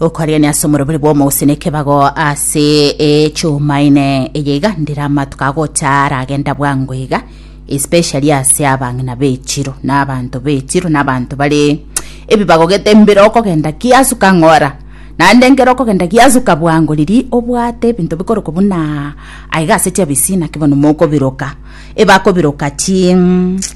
okorigania ase omorobere bw'omogusii na ekebago ase echumaine eye iga ndire amatuko agocha aragenda bwango iga especially ase abang'ina b'echiro na abanto b'echiro na abanto bare ebibago gete mbiro okogenda kiasuka ng'ora Naende ekero okogenda giasuka bwango riria obwate ebinto bikorokwa buna aa, aiga ase chiabisi naki bono mokobiroka, ebakobiroka chi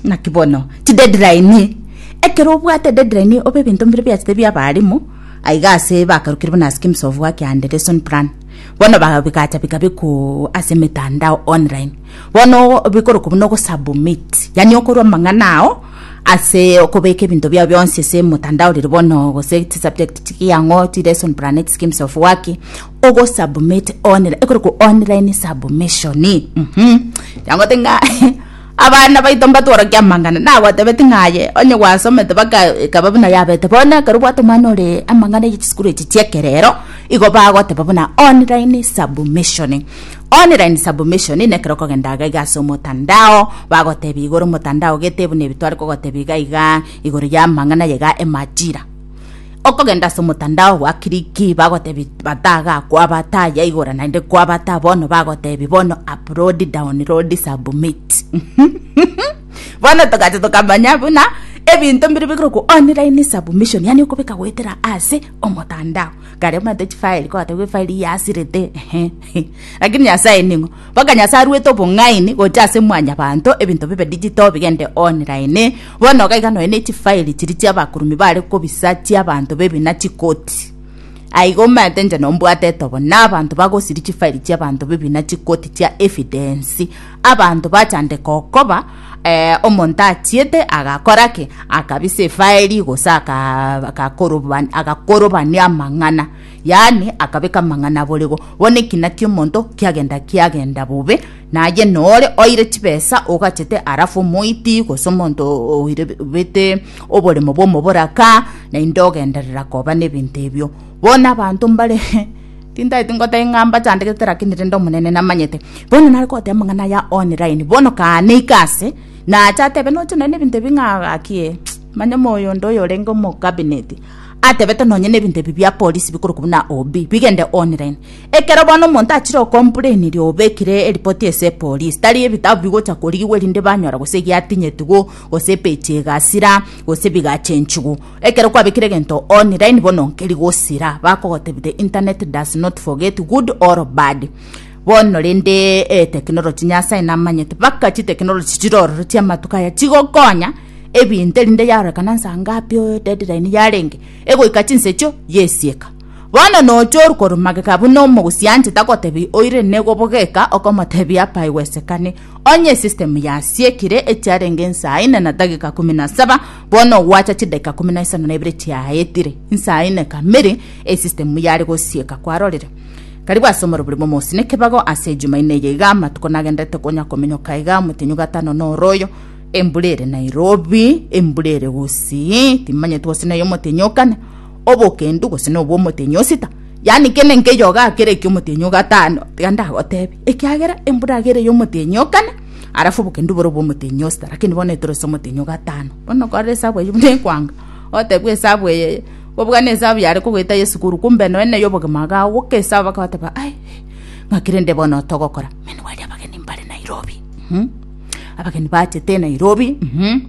naki bono chideadline, ekero obwate deadline obe ebinto mbire biachete bia abaalimu, aiga ase bakarukire buna schemes of work and lesson plan, bono bagacha bikabekwa ase emetandao online. Bono bikorokwa buna ogosubmit, yaani okorwa amang'ana ao ase okobeka ebinto biao bionsi ase emotandao riria bono gose chisubject chiria ang'o chilesson plan chischemes of work ogosubmit online ekorokwa online submission mmh riagote ng'a abana baito mbatworokia amang'ana nagotebeti ng'a aye onye gwasomete baka ekaba buna yabete bono ekero obwate omwana ore amang'ana ya chisukuru echi chi'ekerero igo bagoteba buna online submission. Online submission nekero okogenda iga iga ase omotandao bagotebia igoro omotandao gete buna ebi tware kogotebia iga iga igoro ya amang'ana ye iga emajira okogenda ase omotandao gwa kiriki bagotebi bataga kwabata yaigora naende kwabata bono bagotebi bono upload download submit bono togacha tokamanya buna ebinto mbiri bigire ku online submission yani okobeka goetera ase omotandao kare omanyete chifile kogotebia efaili yasirete ehe Lakini Nyasae ning'o? Mpaka Nyasae aruete obong'aini gocha ase mwanyabanto ebinto bibe digital bigende online. Bono iga iga nonya ne chifile chiri chiabakurumi bare kobisa chiabanto baby na chikoti. Aiga omanyete inche nombwate etobo na abanto bagosiria chifile chiabanto baby na chikoti chia evidence. Abanto bachandeka okoba eh, omonto achiete agakora ki? Akabisa efile gose aka- akakoroban- akakorobania amang'ana. Yaani, akabeka amang'ana aborego, bono ekina ki'omonto kiagenda kiagenda bobe, na aye nore oire chibesa ogachete arafu omoiti gose omonto oire bete oboremo bw'omoboraka, naende ogenderera koba nebinto ebio. Bono abanto mbare tintagete ngoteba ng'a mbachandegete lakini rende Omonene namanyete. Bono nare goteba amang'ana aya online, bono kaaneika ase, naache atebe noche nonye nebinto ebi ng'a gaki ee, manya moyo onde oyorenge omocabinet, atebete nonye nebinto ebi bia polisi bikorokwa buna OB bigende online. Ekero bono omonto achire okompureinirie obekire eripoti ase epolisi, tari ebitabu bigocha korigigwa erinde banyora gose giatinyetigwo gose epeji egasira gose bigachenchigwa. Ekero kwabekire egento online bono nkeri gosira bakogotebia the internet does not forget good or bad. Bono rende etekinoloji Nyasae namanyete baka chitekinoloji chire ororo chi'amatuko aya chigokonya ebinto erinde yarorekana nsa ngapi oyo deadline yarenge egoika chinsa echio yesieka. Bono nocha oru korwa magega buna omogosianche tagotebi oire nigo bogeka okomotebia apaigwesekane onye esystem yasiekire echiarenge nsa ine na dagika kumi na saba bono gwacha chidakika kumi na isano na ibere chiaetire nsa ine kamiri esystem yare gosieka kwarorire Karibu ase omorobori momosi nekebago ase ejuma ine eye iga amatuko nagenderete konya komenyoka iga omotenyu gatano noroyo Embura ere Nairobi, embura ere gosii, timanyeti gose neye omotenyi okane, obokendu gose nobwo omotenyi osita. Yani kene nkeyo ogakera eki omotenyi ogatano, tiga ndagotebi. Ekiagera embura agere yo omotenyi okane, arafu obokendu bore obwo omotenyi osita, lakini bono etoro ase omotenyi ogatano. Bono korora esabu eyio buna ekwanga, otebwa esabu eyeye, kobua ne esabu yare kogoeta Yesu korwa kumbe noe neye obogima agao goka esabu bakabateba ai, ng'aki rende bono otogokora? Mani bari abageni mbare Nairobi. Uhum. Abageni bachete Nairobi, mhm.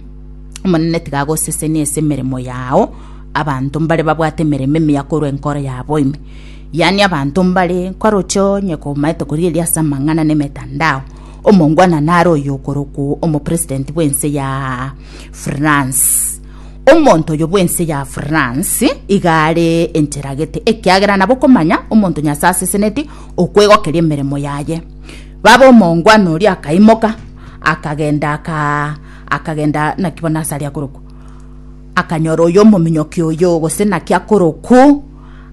Omonene tiga agosesenie ase emeremo yao, abanto mbare babwate emeremo emiya korwa enkoro yabo ime. Yaani abanto mbare kwaroche onye komaete korigereria ase amang'ana na emetandao, omongwana nare oyo okorokwo omopresident bw'ense ya France. Omonto oyo bw'ense ya France iga are encheragete, ekiagera nabo okomanya omonto Nyasae aseseneti okwegokeria emeremo yaye. Baba omongwana oria akaimoka, akagenda, aka, akagenda naki bono asare akorokwa. Akanyora oyo omominyoki oyo, gose naki akorokwa,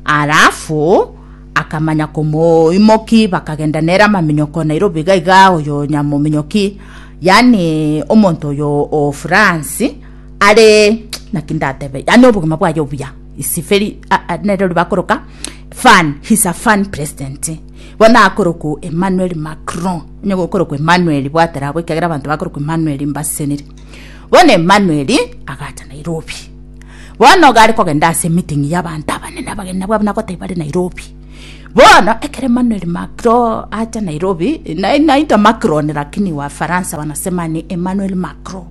alafu akamanya komoimoki, bakagenda nere amaminyoko Nairobi iga iga, oyo nyamominyoki, yani omonto oyo o France, are naki ndatebe, yani obogima bwaye obuya, is very, a- a- nere ori bakoroka fun, he's a fun president. bono akorokwa Emmanuel Macron, onye gokorokwa Emmanuel bwate rabo, ekiagera abanto bakorokwa Emmanuel mbaseseniri. Bono Emmanuel agacha Nairobi. Bono gare kogenda ase emeeting ya abanto abanene abageni nabwo abana goteba bare Nairobi. Bono ekero Emmanuel Macron acha Nairobi, na- naitwa Macron lakini Wafaransa banasema ni Emmanuel Macron.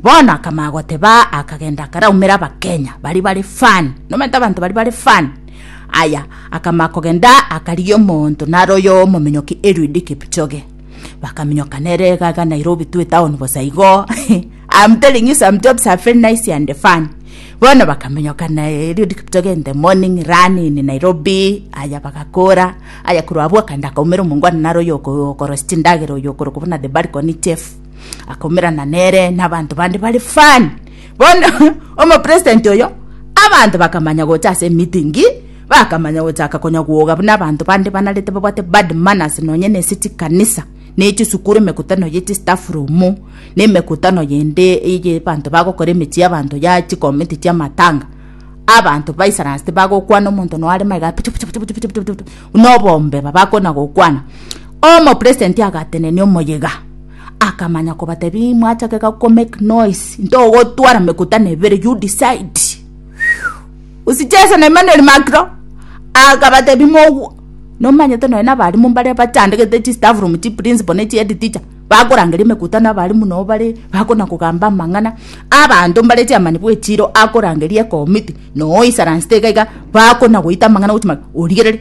Bono akamanya goteba akagenda akaraumera Abakenya baria bare fan, nomanyete abanto baria bare fan. Aya akamaka kogenda akarigia omonto nare oyo omominyoki Eliud Kipchoge bakaminyoka nere egaga Nairobi to a town bosa igo I'm telling you some jobs are very nice and fun bono bakaminyoka na Eliud Kipchoge in the morning run in Nairobi aya bagakora aya korwa abwo akanda akaumera omongwana nare oyo oko- okorosi chindagera oyo okorokwa buna the balcony chef akaumerana nere n'abanto bande bari fun Bono omopresident oyo, abanto bakamanya gocha ase emitingi, bakamanya gochaka konya gwoga buna abanto bande banarete babwate bad manners nonye nese chikanisa, na echisukuru, emekutano ye chistaff room, na emekutano yende eye abanto bagokora emechie y'abanto ya chikomiti chi'amatanga. Abanto baisaranse tibagokwana omonto nonya are magega puchu puchu puchu puchu puchu puchu, buna obombeba bakona gokwana. Omopresident agatenenia omoyega. Akamanya kobatebia, Imwachakeka komake noise, ntogotwara mekutano ebere, you decide. Usichese na Emmanuel Macro. Akabatebia, Mogwo, nomanyete nonya nabarimu mbaria bachandegete chistaff room chi principal ne chi head teacher, bakorangeria emekutano abarimu nao bare bakona kogamba amang'ana, abanto mbare chairman bw'echiiro akorangeria ekomiti, noo isarance teka iga, bakona goita amang'ana gochia maka, origereri.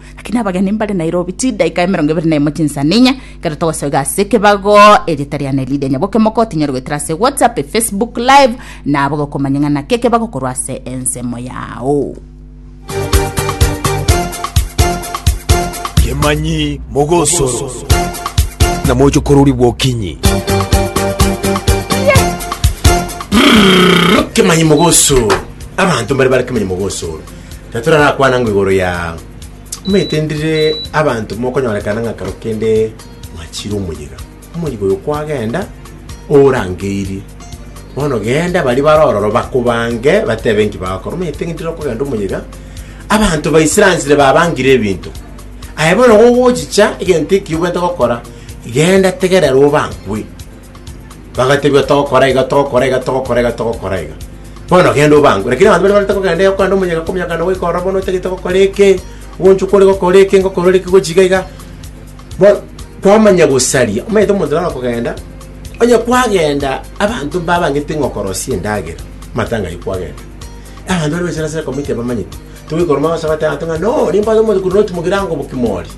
Lakini abageni mbare Nairobi chidaika emerongo ebere na emo chinsaninya kero togosoiga ase ekebago erieta riane Lydia Nyaboke Moko tinyare goetera ase WhatsApp, Facebook Live na abo gokomanya ng'a naki ekebago korwa ase ensemo yao. Kemanyi Mogosoro na Mochokorori Bwokinyi. Kemanyi Mogosoro. Abanto mbare bare Kemanyi Mogosoro. Na torarakwana ng'a igoro ya omanyete ndire abanto mokonyorekana ng'a kero kende mwachire omoyega. Omoyega oyo kwagenda orangeirie. Bono genda baria bare ororo bakobange batebe enki bagokora. Omanyete ng'a ndire okogenda omoyega abanto ba Israeli babangire ebinto. Aye bono gogochicha egento ekio obwate gokora genda tegerera obangwe. Bagatebia, Togokora iga, togokora iga, togokora iga, togokora iga. Bono genda obange. Lakini abanto baria barenta kogenda iga kogenda omonyene akomanya ng'a nagoika ororo bono otagete gokora eke, ogonchwa kore gokora eke, ngokora ore eke gochia iga iga. Bono kwamanya gosaria, omanyete omonto naro okogenda, onye kwagenda abanto mbabangete ng'a okorosia endagera, amatanga ayio kwagenda. Abanto baria baichire ase ekomiti abamanyeti, togoika ororo mambose goteeba abanto ng'a no, nimbwate omochie korwa notimogera ango bokima oria.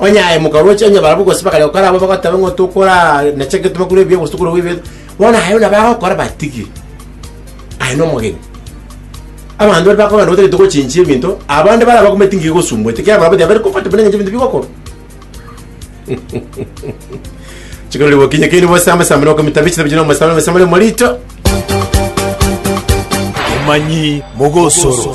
Onye aye mokaroche onye barabwo gose bakare gokora abwo bagoteba ng'a tokora na ching'iti bakure ebiya gose tokore ebiya bono aye buna bagokora batigire aye nomogeni abanto baria bakogenda batagete gochinchia ebinto abande bare abakumeti ngiya egosumbuete kera barabwo tibaberi kobwate buna eng'encho ebinto bigokorwa chikorori gokinya keini bosambe sambe na okomita bichita bichita na omosambe omosambe na omorito Emanyi mogosoro.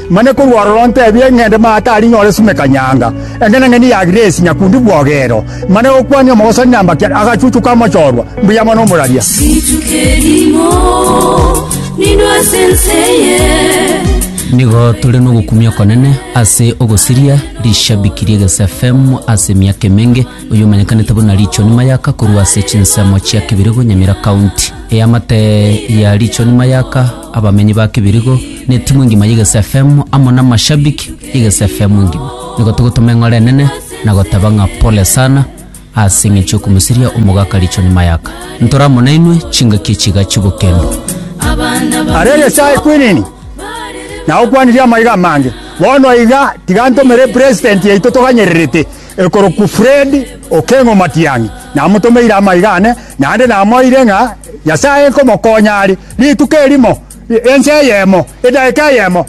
Mane korwa ororo ntebie ng'ende maate aria nyore sume kanyanga, engenang'eni ya Grace nyakundi bwogero, mane gokwania omogosani na mbakia agachuchu kamochorwa mbuya mono omoraria. Rituko erimo nindo ase ense eye. Nigo tore nogokumia okonene ase ogosiria rishabiki ri'Egesa FM ase emiaka emenge, oyomanyekanete buna Richoni Mayaka korwa ase chinsemo chia Kibirigo, Nyamira County. Eamate ya Richoni Mayaka. abamenyi ba Kibirigo, na etimu engima y'Egesu FM amo namashabiki y'Egesu FM engima. Nigo togotoma eng'ora enene na goteba ng'a pole sana ase eng'encho yokomosiria omogaka Richoni Mayaka. Ntore amo nainwe chingaki echi iga chibokendo. Aria Nyasae kwinini, na okwanirie amaiga amange. Bono iga tiga ntomere President yaito toganyererete. Ekorokwa Fred Okengo Matiang'i, namotomeire amaiga ane, naende namoeire ng'a Nyasae nkomokonya are rituko erimo, ense eyemo, edaika eyemo.